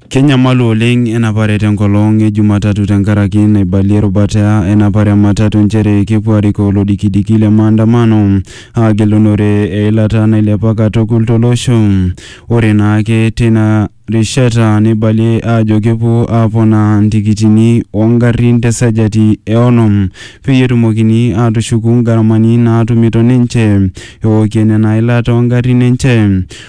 Kenyamalu oleng enapare tenkolong e Jumatatu tenkaraki naibalie erubata enapare e matatu nchere kepuo arikoo lodikidiki le maandamano agilunore eilata nailepa katukul tolosho. Ore naake teina rishata neibalie aajo kepuo aaponaa ntikitini oo ngarin te sajati e onom peyie etumokini aatushuku ngaramani naatumito ninche eokie nena ilat oo ngarin enche.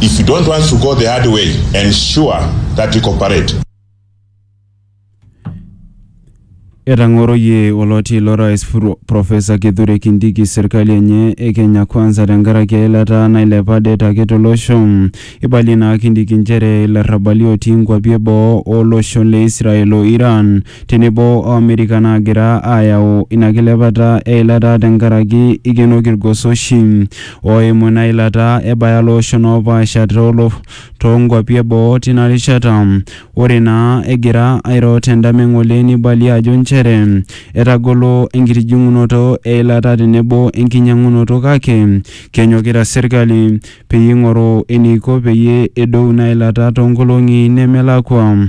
If you don't want to go the hard way, ensure that you cooperate. Etang'oroyie oloti lo rais Pro- Profesa Kithure Kindiki serkali enye e Kenya Kwanza tenkaraki eilata nailepa det ake tolosho. Eibalie naa Kindiki nchere ilarrabali otii nkuapi eboo olosho le Israel o Iran tenebo o Amerika naagira aayau ina kilepata e ilata tenkaraki eikenoki ilgoso oshi ooimu ina ilata ebaya ilooshon oopaasha too nkuapi e boo tina rishata. Ore naa egira airo te ndama e ng'ole neibalie ajo nchere etagolo enkitijing'unoto e ilata tenebo enkinyang'unoto kake kenyokita serkali peyie eing'oru eneiko peyie edou ina ilata too nkolong'i nemelakua.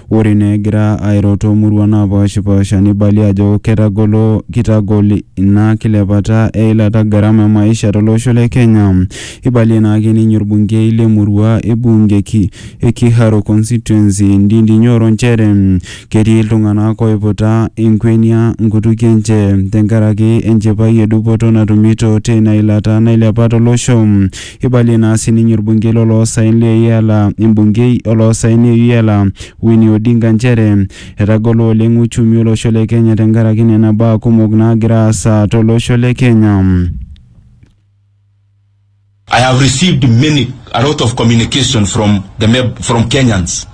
Ore naa egira airo too muruan naapaashipaasha neibalie ajo ketagolo kitagol ina kilepata e ilata garama e maisha to losho le Kenya. Eibalie naa ake ninye olbungei le murua e bunge e Kiharu constituency Ndindi Nyoro nchere ketii iltung'ana ooiputa enkuenia nkutukie enche tenkaraki enchipai e dupoto natumito teina ilata nailepa to losho. Eibalie naa sininye olbunkei lo loosaen le Iala, embunkei o loosaen e Iala, Winnie Odinga nchere etagolo oleng uchumi o losho le Kenya tenkaraki nena baa kumok naagira aasa to losho le Kenya. I have received many, a lot of communication from the from Kenyans.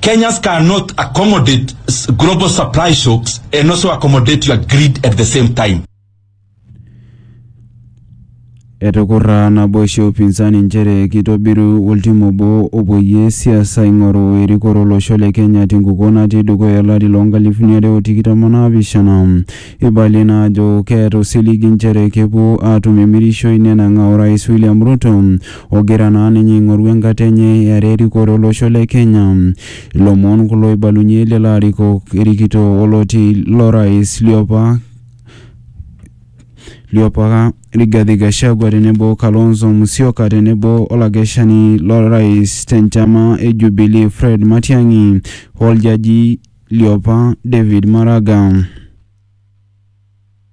Kenyans cannot accommodate s- global supply shocks and also accommodate your greed at the same time. Etukurra naboisho e upinzani nchere kitobiru oltim obo opoyie siasa aing'oru erikore olosho le Kenya tenkukuo natii dukuya olari loo nkalifuni are o tikitam o naapishana. Eibalie naa ajo keeta osiligi nchere kepuo aatum emirishoi nenang'aa orais William Ruto ogira naa ninye aing'oru enkata enye eare erikore olosho le Kenya. Ilomon kulo oibalunye lelo arikok erikito oloti lorais liopa liopa Rigathi Gachagua tenebo Kalonzo Musyoka tenebo olakeshani lorais tenchama e Jubilee Fred Matiang'i oljaji liopa David Maraga.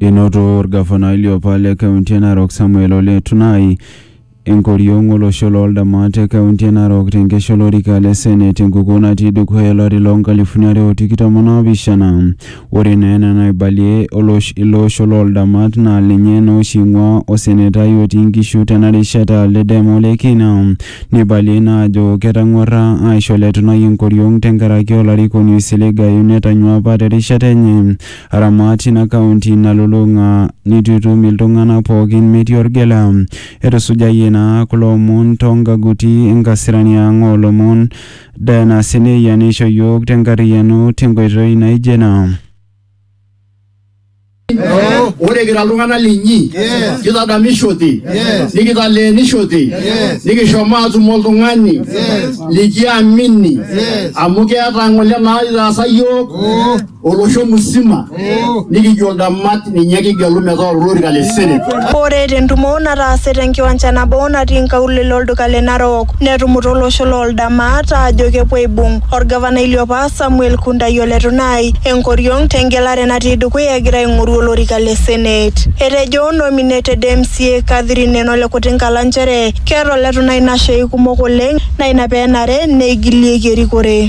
Enoto olgafanai liopa le kaunti e Narok Samuel Ole Tunai enkoriong olosho loo ldamat te kaunti e Narok te nkesha olorika le Senate te nkukuo natii dukuya o lari loo nkalifuni are o tikitam o naapishana. Ore naa ena naibalie ilo osho loo ldamat naa lenye naa oshi eing'uaa osenetai otii nkishu tena rishata le Dem Ole Kina. Neibaliae naa ajo ketang'uarra aaisho Ole Tunai enkoriong tenkaraki olarikoni oisiligayu netanyua apa te rishata enye Aramat ina kaunti nalulung'a nitu itum iltung'ana pookin metii olgela. Etusujayie naa kulo omon too nkaguti e nkasirani ang oo lomon, Diana Seneia neisho iyiook te nkarriyiano te nkoitoi naijo ina. Ore kira iltung'ana linyi, kitadamishote, nikitaleenishote, nikishomo aatum oltung'ani likiamini amu keeta ng'ole naitaasa iyiook. olosho musima nikijo ntamat ninye kigelu metaa olorika le senate. Ore tentumo nataase tenkiwanja nabo natii nkaulele olduka le Narok netumuta olosho loo Ldamat aajo kepuo aibung olgavanai liopa Samuel Kundai o Letunai enkoriong tengelare natii dukuya egira aing'oru olorika le senate. Etejo nominated MCA Catherine Eno le Kutinkala nchere keeta Oletunai nashei kumok oleng naa ina pee enare neigilieki erikore.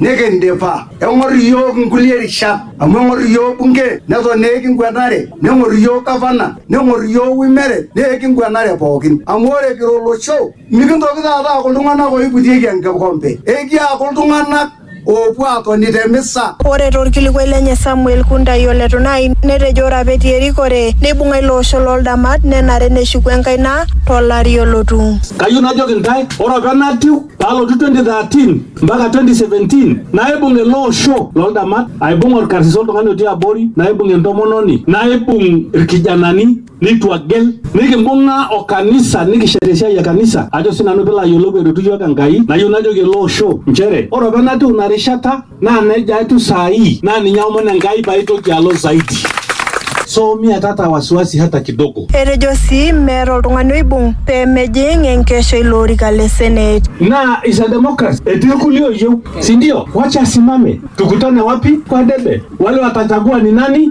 nikindipa eng'or iyiook nkulie rishat amu eng'or iyiook bunge neton naa ekinguenare neng'or iyiook gavana neng'or iyiook wimere naa ekinguenare pookin amu ore kira olosho mikintoki taata aaku iltung'anak oiputieki enkikompe ekiaaku iltung'anak oopuo aatoni te misa Ore torkilikuai lenye Samuel Kuntai ole Tunai netejo ore apa etii erikore neibung'a ilo osho loo ldamat nenare neshuku enkaina to lari olotu. Kayieu najoki intae ore apa enatiu palotu 2013 mpaka 2017 naibung ele osho loldamat aibung orkarsis oltung'ani otii abori naibung entomononi naibung irkijanani nitu agel nikimbung'a o kanisa nikishet esiai e kanisa ajo sinanu pilo ayiolou eretu yiok enkai nayieu najoki ele osho nchere ore opa natiu ina rishata Naa neja etiu saa hii, naa ninye aomon Enkai paitoki alo zaidi. So mia tata wasiwasi hata kidogo. Etejo sii meeta oltung'ani oibung pee mejing enkesho ilo orika le Senate. Naa is a democracy. Etii irkulie oyieu, si ndio? Wacha asimame. Tukutane wapi? Kwa debe. Wale watachagua ni nani?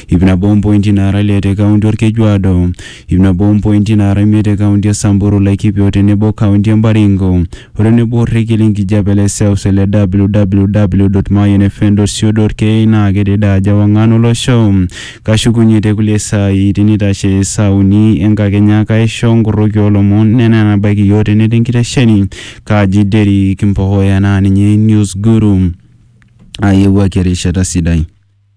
ip nabo ompointi naara ile te kaunti Olkejuado, ip nabo ompointi naara imiet te kaunti e Samburu, Laikipia o tenebo o kaunti e Baringo, o tenebo orrekie le nkijape le seuse le www.mayianfm.co.ke naa kedede ajo ewang'an o losho. Kashukunye te kulie saai tinitashe saa uni e nkakenya kaisho nkorroki oo lomon nena enabaiki iyiook tene te nkitesheni. Kaji Derrick Mpohoya naa ninye News Guru. Aayewuaki erishata sidai.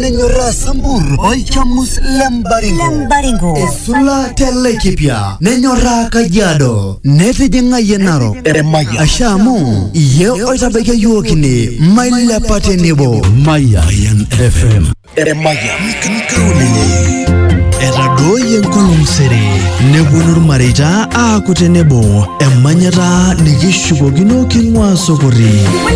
nenyorraa sambur olchamus le mbaringo Lembaringo. esula te laikipia nenyorraa kajiado netijing'ayie narok asha amu iye oitabaikia yiok ine mailepa tenebo Mayan FM. etadooyie enkolong sere nepuonu ilmareita aaku tenebo emanyata nikishukokino king'uaa sokori